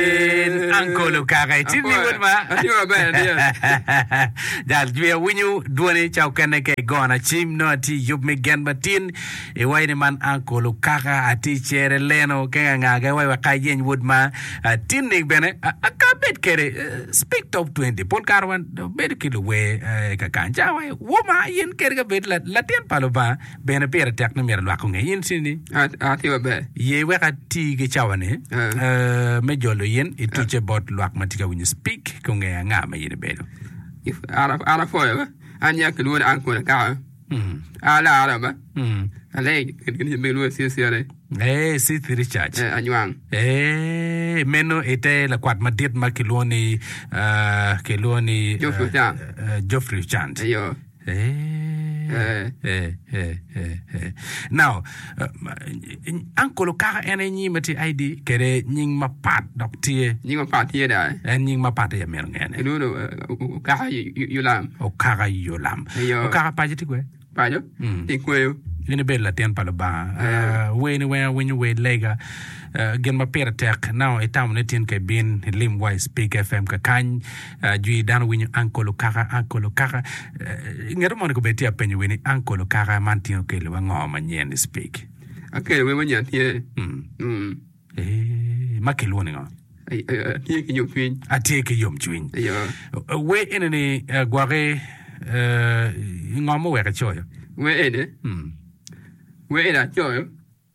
Yin Uncle Okaka icim ni wod ma. Atye maber adiya. Jal jwi awinyo dwoni ca okene ka igona cim nongo atye i yub me gen matin iwaci ni man Uncle Okaka atye i cere leno kenge anga ga iwaci wek ka ayeny wod ma ah, tinni bene ah, ah, ka abed kede eh, speak top 20 pol kare wan bedo ki luwer eh, ka kany ca wa wo ma yen kede ka bed la- latin pa Lubanga bene pire tek ni myero lwak onge. In Cindy? Atye maber. Ye wek ati ki cawani me jolo in ituce bot lwak ma tye ka winyo Speak ki ongeyo anga ma in ibedo. An apwoyo ba. An ya kilwongo ni Uncle Akaka. An alara ba. Aleng kit kit ma kilwongo Sith Cere. Eh, Sith Richards. Eh, anywang. Eh, meno ite lakwat madit ma kilwongo ni ah, kilwongo ni Geoffrey Ochan. eh, Geoffrey Ochan. Eyo. Now, uncle okaka en aye nyinge ma tye ID kede nying mapat dok tye. Nying mapat tye da. En nying mapat aye amyero ngene. Kidudu okaka Yolam. Okaka Yolam. Ayo. Okaka paco tye kwe? Paco? Mm. Tye kweyo. In ibedo latin pa Lubanga. Ah, weni weng awinyo wer lega. Ah, gin ma pire tek. Now, itamo ni tin ka ibin ilim wa i Speak FM kakany. Ajwi dano winyo Uncle Okaka, Uncle Okaka. I ngeto mono kobed tye apenyo wer ni Uncle Okaka man tyen okelo wa ngo manyen i speak? Akelo wer ma nyen tye. Mm. Eh, ma kilwoni ngo? Ay- ay- ay, Tye ki yom cwiny. Atye ki yom cwiny. Ayo. Wer ene ni eh, gwake eh, ngo moweke coyo? Wer ene, Mm. wer ene acoyo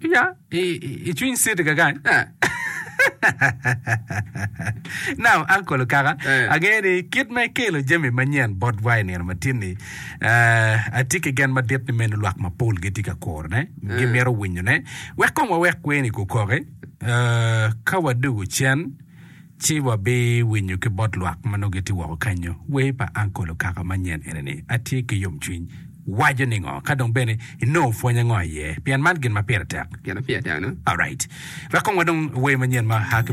Pia i cwiny city kakany. Now uncle okaka angeyo ni kit ma ikelo jami manyen bot wa i nino matin ni atye ki gen madit ni meno lwak mapol gitye ka kuro ne gimito winyo ne wek kong wawek kweni kukoki ka wadugu cen Ci wabiwinyo ki bot lwak ma nongo gitye woko kanyo. Wer pa Ankol Okaka ma nyen enini, Atye ki Yomcwiny, waco ningo? Ka dong bene inongo pwony ango iye? Pien man gin ma pire tek. Gin ma pire tek-nu. Alright. Wek kong wadong wer manyen ma a ki.